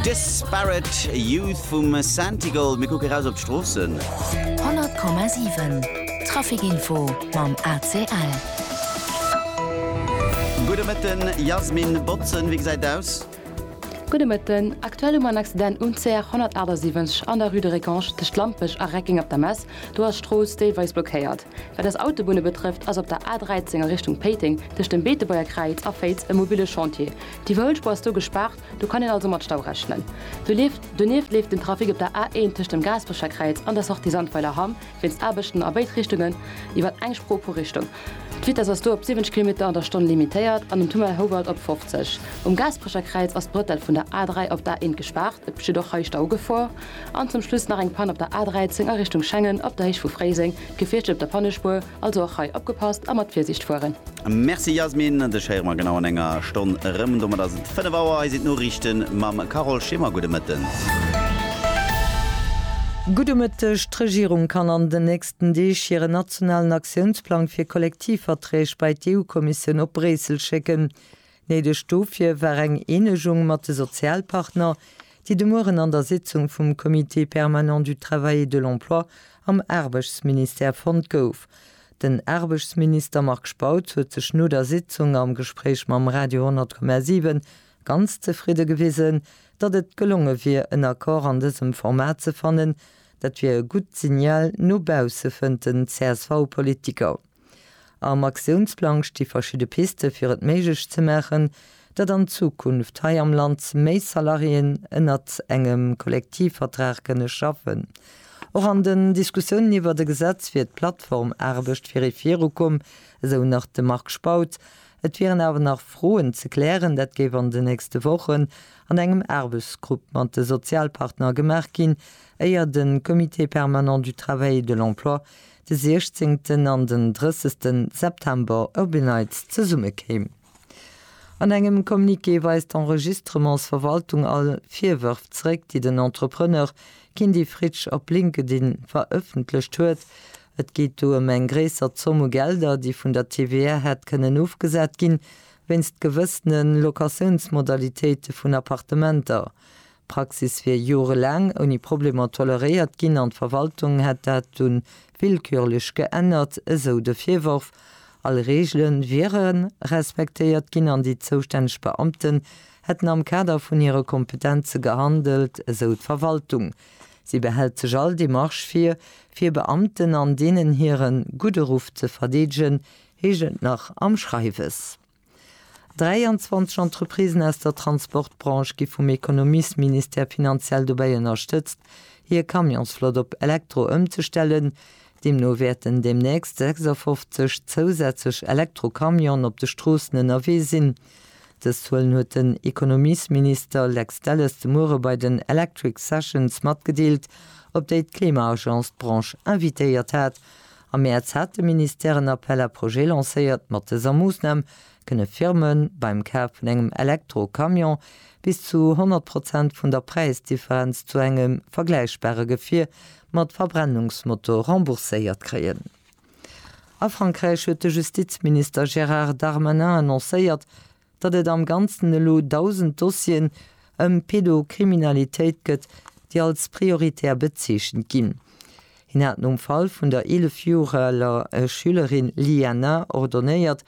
Disparate Youth vum Santigold. Mir kucke raus op d'Stroossen. 100,7 Traficinfo mam ACL. Gudde Mëtten, Jasmin Botzen, wéi gesäit et aus? Gudde Mëtten, Aktuell hu mer en Accident um CR 178 an der Rue de Récanche tëscht Lampech a Recking op der Mess. Do ass d'Strooss deelweis blockéiert. Wat eis Autobunne betrëfft, ass op der A 13 a Richtung Péiteng tëscht dem Beetebuerger Kräiz a Féiz e mobile Chantier. Déi Wëllspur ass do gespaart, do kann een also mat Stau rechnen. Donieft leeft den Trafic op der A1 tëscht dem Gaasperecher Kräiz an der Sortie Sandweiler Hamm wéinst Aarbechten a béid Richtungen iwwer eng Spro pro Richtung. D'Vitess ass do op 70 Kilometer an der Stonn limitéiert an um Tunnel Houwald op 50. Um Gaasperecher Kräiz ass d'Brëttel vun der A3 op d'A1 gespaart, et besteet och hei Staugefor. An zum Schluss nach eng Pann op der A13 a Richtung Schengen op der Héicht vu Fréiseng, d'Gefiechter op der Pannespuer. Also och hei opgepasst a mat Virsiicht fueren. Merci Yasmin, dech héiere mer genau an enger Stonn erëm. Domat ass et 5 Auer, hei sinn d'Noriichte mam Carole Schimmer. Gudde Mëtten. Gudde Mëtteg. D'Regierung kann an den nächsten Deeg hiren nationalen Aktiounsplang fir Kollektivverträg bei d'EU-Kommissioun op Bréissel schécken. Néideg dofir war eng Eenegung mat de Sozialpartner, déi de Mueren an der Sitzung vum Comité permanent du travail et de l'emploi am Aarbechtsministère fonnt gouf. Den Aarbechtsminister Marc Spautz huet sech no der Sitzung am Gespréich mam Radio 10,7 ganz zefridde gewisen, datt et gelonge wier en Accord an dësem Format ze fannen. Dat wier e gutt Signal no bausse, fënnt den CSV-Politiker. Am Aktiounsplang sti verschidde Piste fir et méiglech ze maachen, datt an Zukunft hei am Land méi Salariéen ënnert engem Kollektivvertrag kënne schaffen. Och an den Diskussiounen iwwert e Gesetz wier d'Plattformaarbecht virdru virukomm, esou nach de Marc Spautz. Et wieren awer nach Froen ze klären, dat géif an den nächste Wochen an engem Aarbechtsgrupp mat de Sozialpartner gemaach ginn, éier de Comité permanent du travail et de l'emploi de siechzéngten an den drëssegsten September op een Neits zesumme kéim. An engem Communiqué weist d'Enregistrementsverwaltung all Virwërf zeréck, déi den Entrepreneur Kindy Fritsch op LinkedIn verëffentlecht huet. Et geet do ëm eng gréisser Zomm u Gelder, déi vun der TVA hätt kënnen ofgesat ginn, wéinst gewëssene Locatiounsmodalitéite vun Appartementer. D'Praxis wier jorelaang ouni Problemer toleréiert ginn an d'Verwaltung hätt dat dunn willkürlech geännert, esou de Virworf. All Reegele wiere respektéiert ginn an déi zoustänneg Beamten hätten am Kader vun hire Kompetenze gehandelt, esou d'Verwaltung. Si behält sech all Demarche vir, fir Beamten an deenen hire gudde Ruff ze verdeedegen, heescht et nach am Schreiwes. 23 Entreprisen aus der Transportbranche gi vum Ekonomiesministère finanziell dobäi ënnerstëtzt, hir Camionsflott op Elektro ëmzestellen. Deemno wäerten deemnächst 56 zousätzlech Elektrocamionen op de Stroossen ënnerwee sinn. Dës Zuelen huet den Ekonomiesminister Lex Delles de Muere bei den Electric Sessions matgedeelt, op déi d'Klima-Agence d'Branche invitéiert hat Am Mäerz hat de Ministère en Appel à projets lancéiert. Mat dëser Moossnam kënne Firme beim Kaf vun engem Elektro-Camion bis zu 100 Prozent vun der Präisdifferenz zu engem vergläichbare Gefier mat Verbrennungsmotor rembourséiert kréien. A Frankräich huet de Justizminister Gérard Darmanin annoncéiert, datt et am Ganzen elo 1.000 Dossieren ëm Pedokriminalitéit gëtt, déi als prioritär bezeechent ginn. Hien hat nom Fall vun der 11 Joer aler Schülerin Liana ordonéiert,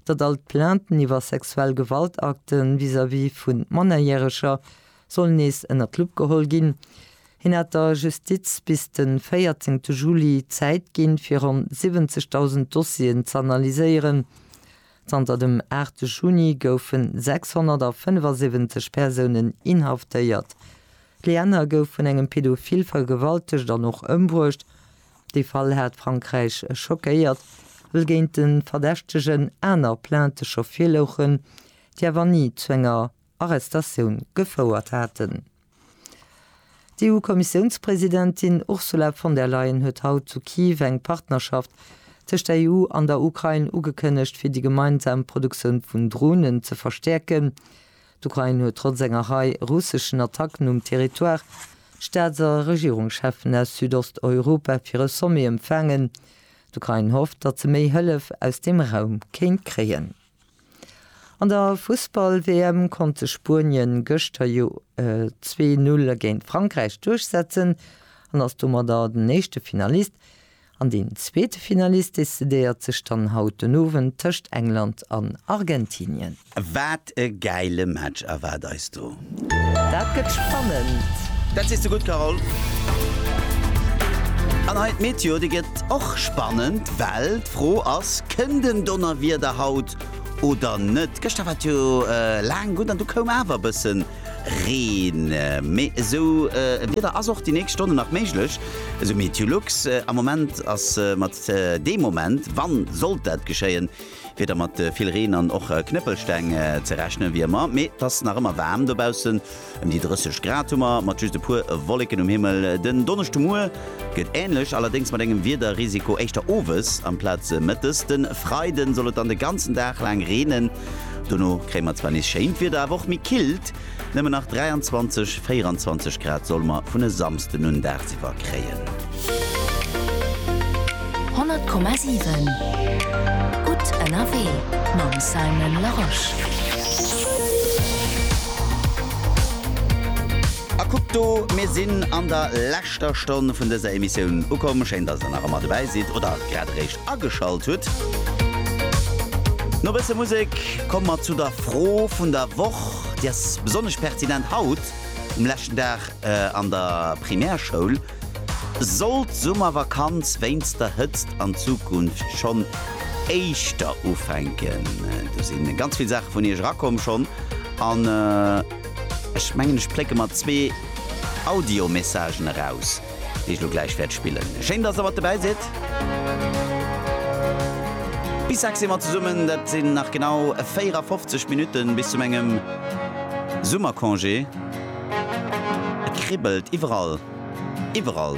datt all d'Plainten iwwer sexuell Gewaltakte vis-à-vis vu Mannerjäreger sollen nees ënner d'Lupp geholl ginn. Hien hat der Justiz bis de 14 Juli Zäit ginn, fir ronn 70.000 Dossieren z'analyséieren. Zanter dem 8 Juni goufen 675 Persounen inhaftéiert. D'Lienner gouf vun engem Pedophil vergewaltegt an och ëmbruecht. Dee Fall hat Frankräich schockéiert, well géint de Verdächtegen aner Plaintë scho virlouchen, déi awer ni zu enger Arrestatioun gefouert haten. D'EU-Kommissiounspresidentin Ursula von der Leyen huet haut zu Kiew eng Partnerschaft tëscht der EU an der Ukrain ugekënnegt, fir déi gemeinsam Produktioun vun Dronen ze verstäerken. D'Ukrain huet trotz enger Rei russeschen Attacken um Territoire Staats a Regierungscheffen aus Südosteuropa fir e Sommet empfaangen. D'Ukrain hofft, datt se méi Hëllef aus deem Raum kéint kréien. An der Fussball-WM konnt sech Spuenien gëschter jo zwee Null géint Frankräich duerchsetzen an ass domadder den éischte Finalist. An deen zweete Finalist decidéiert sech dann haut den Owend tëscht England an Argentinien. Wat e gäile Match erwaart eis do! Dat gëtt spannend! Dat sees de gutt, Carole. An hei d'Meteo, déi gëtt och spannend, well d'Fro ass, Kënnt en Donnerwieder haut oder net? Gëschter war et jo laang gutt an du koum awer e bësse Reen. Mee esou e Wieder ass och déi nächst Stonnen nach méiglech, esou Meteolux. Am Moment ass mat deem Moment, wann sollt dat geschéien, Wieder mat vill Reen an och Knëppelsteng ze rechnen, wéi ëmmer, mee et ass nach ëmmer waarm dobaussen. Ëm déi 30 Grad hu mer, mat just e puer Wolleken um Himmel. Den Donneschdemuer gëtt änlech, allerdéngs mat engem Wiederrisiko éischter owes amplaz mëttes. De Freide soll et dann de ganzen Dag laang reenen, dono kréie mer zwar nees schéint Wieder, awer och méi killt. Nëmmen nach 23, 24 Grad solle mer vun e Samsden un dagsiwwer kréien. 100,7 gutt ënnerwee mam Simon Larosche. A kuckt do, mir sinn an der leschter Stonn vun dëser Emissioun ukomm. Schéin, dass der nach ëmmer dobäi sidd oder grad eréischt. ageschalt hutt. No bësse Musek komme mer zu der Fro vun der Woch. Déi ass besonnesch pertinent haut, um leschten Dag an der Primärschoul. Sollt d'Summervakanz wéinst der Hëtzt an Zukunft schonn éischter ufänken? Do si ganz vill Saache vun iech erakomm schonn an ech mengen, ech plécke mer zwee Audiomessagen eraus. déi ech lo gläich wäert spillen. Schéin, dass der mat dobäi sidd. Bis sechs si mer zesummen. Dat sinn nach genau 54 Minutten bis zu mengem Summercongé. Et kribbelt iwwerall, iwwerall.